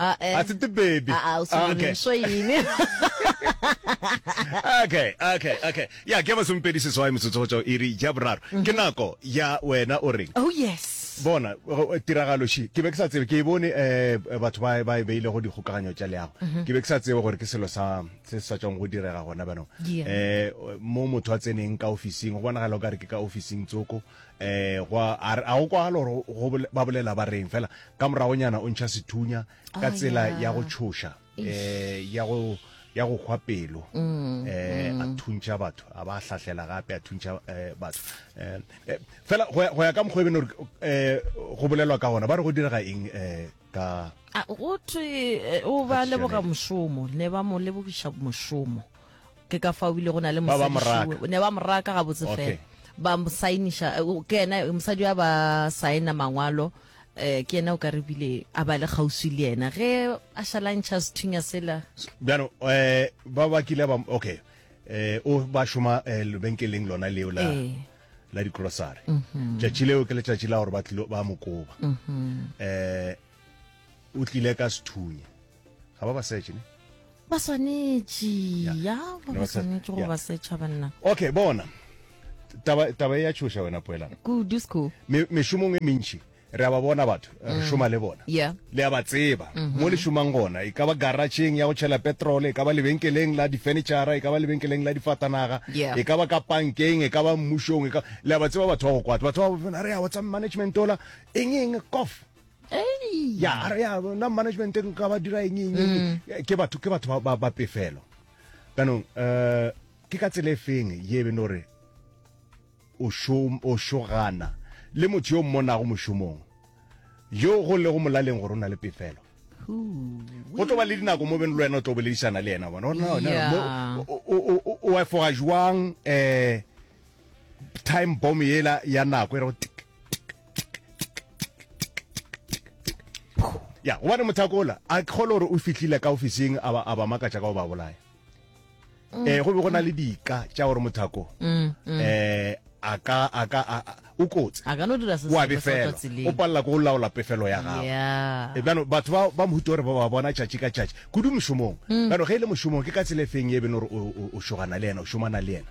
Ah, eh. a tsete baby Ah, ah, o Ah, okay. swanso eng okay okay okay ya ke masompedi seswai metsotso go tswa e re ja boraro ke nako ya wena o reng oh yes bona go- eh, tiragalo she ke be ke sa tsebe ke e bone eh batho ba ba e beile go dikgokaganyo tša leago ke be ke sa tsebe gore ke selo sa se se sa tswang go direga gona banong Yeah. eh mo motho a tseneng ka ofising go bonagala o ka re ke ka ofising tsoko eh gwa a re- a go kwagala gore go- go bole- ba bolela ba reng fela ka moragonyana o ntšha sethunya ka Oh, tsela yeah. ya go tšhoša eh ya go ya go hwa pelo Mm, eh a thuntšha batho a ba hlahlela gape a thuntšha eh, batho Eh, eh, fela go ya- go ya ka mokgwa e bene gore eh, go bolelwa ka gona ba re go direga eng eh ka A, go thwe eh, o ba Ka leboga tšhelete. mošomo ne ba mo lebogiša mošomo ke ka fa o bile go na le mosadišiwe ne ba moraka ga botse fela ba mosainiša eh, ke ena mosadi wa ba saena mangwalo um ke ena o ka re bile a ba le kgauswi le ena ge a šalantšha sethunya sela bjano um eh, ba ba kile ba okay um o ba šoma lebenkeleng lona leo la la dikrosare mhm. tšatši leo ke letšatši la gore ba mokoba um mhm. o tlile ka sethunya ga ba ba search ne ba swanetše ya ba ba swanetše go ba search banna okay bona taba taba ya tshoša wena poela ku disco me me shumong e mintši re a ba bona batho re mm. šoma le bona le a ba tseba mm-hmm. mo le šomang gona e ka ba garageng ya go tšhela petrol e ka ba lebenkeleng la difurnitura e ka ba lebenkeleng la difatanaga e ka ba ka pankeng e ka ba mmušong e le a ba tseba batho ba go kwata batho ba bona re a whatsapp management ola eng eng kof ya ya na management nka ba dira eng eng mm. ke batho ke batho ba ba pefelo kanong eh ke ka tsele feng ye be no re o shom o shogana le motho yo mmona go moshomong yo go le go molaleng gore o na le pefelo go tlo ba le dinako mo beng le wena o tlo boledišana le yena bona o efoga jwang um eh, time bomb yela ya nako e rego tik ya gobane mothakola a kgole gore o fitlhile ka ofising a ba- a ba makatša ka go ba bolaya um go be go na le dika tša gore mothako um a ka a ka a- a- o kotsi a ka no dira se o a sengwe sa go tswa befela o tseleng palela ko o laola pefelo ya gago Yeah. E bjano batho ba ba mohuta gore ba ba bona tšatši ka tšatši kudu mošomong bjano ge e le mošomong ke ka tsela e feng ye e beno gore o- o- o šogana le yena o šomana le yena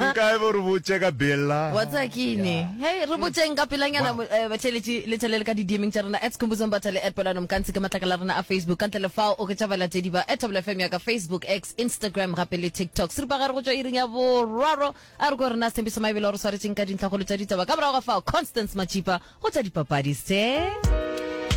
Nkae bo re botše ka bella. Wa tsaya ke ene. Hey, re botšeng ka pelanyana mo- eh, batheletši le tšhelele ka di-DMing tša rena at Skhumbuzo Mbathale at Pelano Mkantsi ke matlakala a rena a Facebook. Ka ntle le fao oketša balatedi ba at Thobela FM ya ka Facebook, X, Instagram gape le TikTok. Seripagare go tšwa iring ya boraro a re ko rena Sthembiso Maebele o re swaretšeng ka dintlhakgolo tša ditaba. Ka morago ga fao Constance Matšipa go tša dipapadi se.